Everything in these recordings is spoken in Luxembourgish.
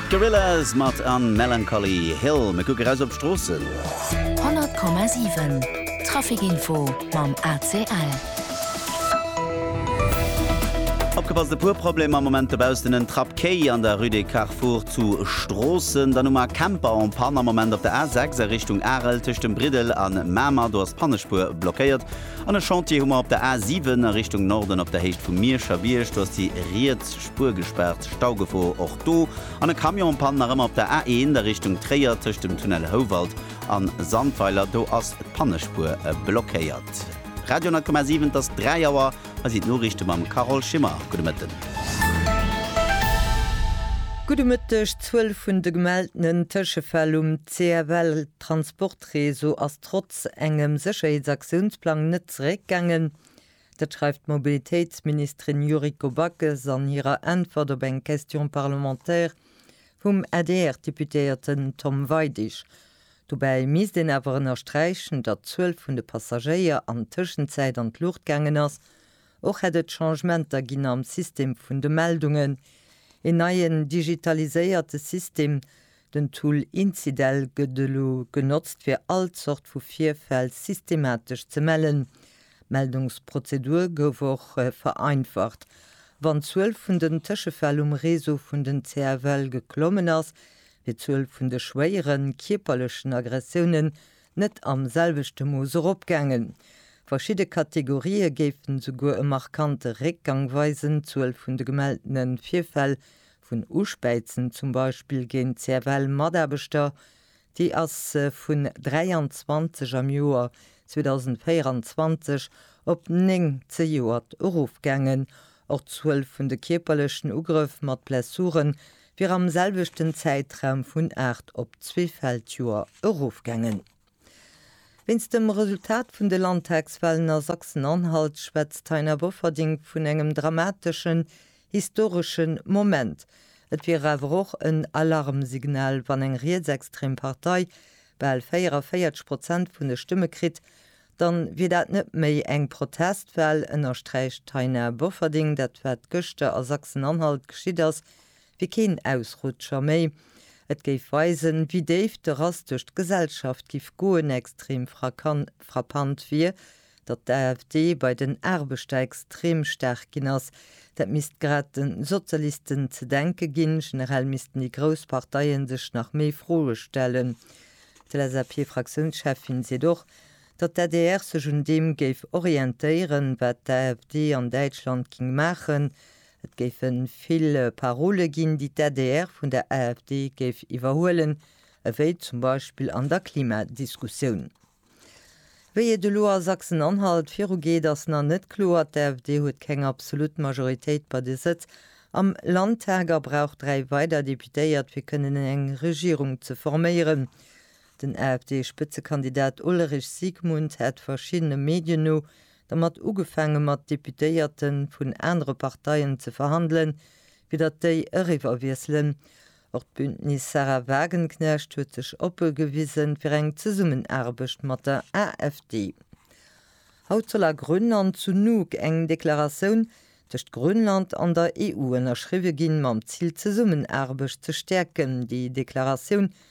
Gorillaz mat An Melancholy Hill. Mir kucke raus op d'Stroossen. 100,7 Trafikinfo mam ACL. Opgepasst, e puer Problemer am Moment dobaussen, en Trapp Quai an der Rue des Carrefours zu Stroossen. Dann hu mer Camper en Panne am Moment op der A6 a Richtung Arel tëscht dem Briddel an Mamer. Do ass d'Pannespuer blockéiert. An e Chantier hu mer op der A7 a Richtung Norden op der Héicht vum Mierscher Bierg. Do ass déi riets. Spuer gespaart, Staugefor och do an e Camion en Panne nach ëmmer op der A1 a Richtung Tréier tëscht dem Tunnel Houwald a Sandweiler, do ass d'Pannespuer blockéiert. Radio 10,7 Et ass 3 Auer, hei sinn d'Noriichte mam Carole Schimmer. Gudde Mëtten. Gudde Mëtteg. D'Zuel vun de gemeltenen Tëschefäll um CFL-Transportreseau ass trotz engem Sécherheetsaktionsplang net zeréckgaangen. Dat schreift d'Mobilitéitsministerin Yuriko Backes an hirer Äntwert op eng Question parlementaire vum ADR-Deputéierten Tom Weidig. Dobäi misst een awer ënnersträichen, datt d'Zuel vun de Passagéier an Tëschenzäit an d'Luucht gaangen ass. Och hätt et Changementer ginn am System vun de Meldungen. Een neien digitaliséierte System Den Tool Incidel gëtt elo genotzt fir all Zort vu Virfäll systematesch ze mellen. D'Meldungsprozedur gouf och vereinfacht. Wann d'Zuel vun den Tëschefäll um Réseau vun den CFL geklommen ass, wier d'Zuel vun de schwéieren, kierperlechen Aggressiounen net am selwechte Mooss eropgaangen. Verschidde Kategorië géifen souguer e markante Réckgang weisen, d'Zuel vun de gemelltene Virfäll Vun Uspäizen zum Beispill géint d'CFL-Mataarbechter, déi ass vun 23 am Joer 2024 op 9 zejoert erofgaangen. Och d'Zuel vun de kierperlechen Ugrëff mat Blessure wier am selwechten Zäitraum vun 8 op zwee Feldjoer erofgaangen. Wéinst dem Resultat vun de Landtagswahlen a Sachsen-Anhalt schwätzt d'Taina Bofferding vun engem dramateschen, historeschen Moment. Et wier awer och en Alarmsignal, wann eng rietsextrem Partei bal 44 Prozent vun de Stëmme kritt, dann wier dat net méi eng Protestwahl, ënnersträicht d'Taina Bofferding. Dat wat gëschter a Sachsen-Anhalt geschitt ass, wier keen Ausrutscher méi. Et géif weisen, wéi déif de Rass duerch d'Gesellschaft giff goen. Extrem frappant wier, datt d'AfD bei den Aarbechter extrem staark ginn ass. Dat misst grad de Sozialisten ze denke ginn. Generell missten déi grouss Parteie sech nach méi Froe stellen. D'LSAP-Fraktiounscheffin seet och, datt d'ADR sech un deem géif orientéieren, wat d'AfD an Däitschland géing maachen, Et géife vill Parole ginn, déi d'ADR vun der AfD géif iwwerhuelen, ewéi zum Beispill an der Klimadiskussioun. Wéi et elo a Sachsen-Anhalt virugeet, ass nach net kloer. D'AfD huet keng absolut Majoritéit bei de Sëtz am Landtag a brauch dräi weider Deputéiert, fir kënnen eng Regierung ze forméieren. Den AfD-Spëtzekandidat Ulrich Siegmund hat verschiddene Medien no dermat ugefaange mat Deputéierte vun anere Parteien ze verhandelen, fir datt déi eriwwerwiesselen. Och d'Bündnis Sarah Wagenknecht huet sech oppe gewise fir eng Zesummenaarbecht mat der AfD. Haut soll a Grönn an zu Nuuk eng Deklaratioun tëscht Grönland an der EU ënnerschriwwe ginn, mam Zil d'Zesummenaarbecht ze stäerken. Déi Deklaratioun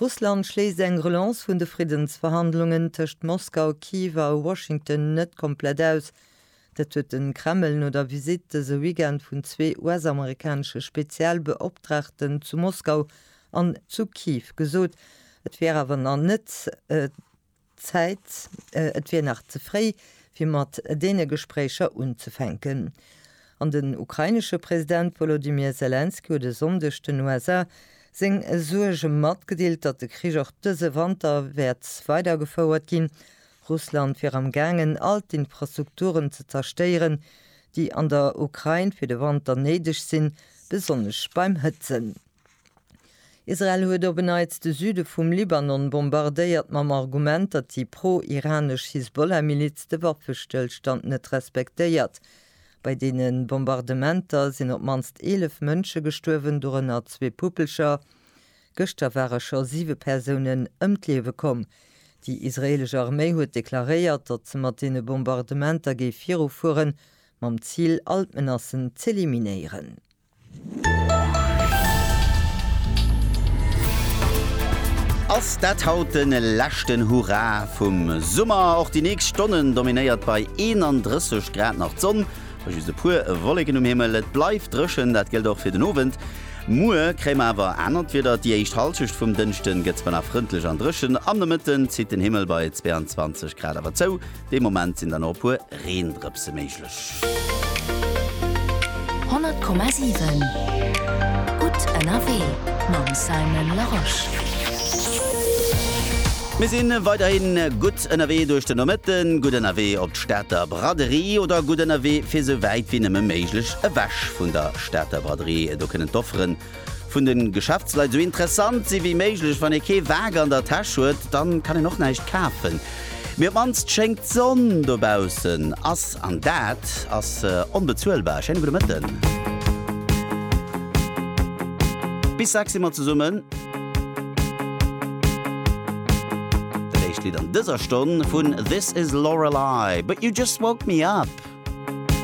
Russland schléisst eng Relance vun de Friddensverhandlungen tëscht Moskau, Kiew a Washington net komplett aus. Dat huet de Kreml no der Visitt dëse Weekend vun zwee US-amerikanesche Spezialbeoptraagten zu Moskau an zu Kiew gesot. Et wier awer nach net Zäit, et wier nach ze fréi, fir mat deene Gespréicher unzefänken. An den ukrainesche President Wolodymyr Selenskyj huet e Sonndeg den USA seng Suerge matgedeelt, datt de Krich och dëse Wanter wäert weidergefouert ginn. Russland wier am gaangen, all d'Infrastrukturen ze zerstéieren, déi an der Ukrain fir de Wanter néideg sinn, besonnesch beim Hëtzen. Israel huet op en Neits de Süde vum Libanon bombardéiert, mam Argument, datt déi pro-iranesch Hisbollah-Miliz de Waffestëllstand net respektéiert. Bei deene Bombardementer sinn op d'mannst 11 Mënsche gestuerwen, dorënner zwee Puppelcher. Gëschter ware scho siwe Persounen ëm d'Liewe komm. Déi israeelesch Arméi huet deklaréiert, datt se mat deene Bombardementer géif virufueren, mam Zil, all d'Menacen z'eliminéieren. Ass dat haut den leschten Hurra vum Summer? Och déi nächst Stonnen dominéiert bei 31 Grad nach d'Sonn, bei just e puer Wolleken um Himmel. Et bleift dréchen, dat gëllt och fir den Owend. Muer kréie mer awer anert Wieder, déi éischt Hallschecht vum Dënschden gëtt zwar nach frëndlech an dréchen, am Nomëtten zitt den Himmel bei 22 Grad awer zou. Dee Moment sinn der nach e puer Reendrëpse méiglech. 100,7 Gutt ënnerwee mam Simon Larosche. Mir si weiderhin gutt ënnerwee duerch den Nomëtten, gutt ënnerwee op d'Stater Braderie oder gutt ënnerwee fir esou wäit wéi nëmme méiglech ewech vun der Stater Braderie. Do kënnen d'Offeren Vun den Geschäftsleit sou interessant si wéi méiglech. Wann ee kee Wak an der Täsch huet, dann kann een och näischt kafen. Mee op d'mannst schéngt d'Sonn dobaussen ass an dat ass onbezuelbar. Schéine gudde Mëtten. Bis 6 si mer zesummen. Dat éischt Lidd an dëser Stonn vun This Is Lorelei, But You Just Woke Me Up.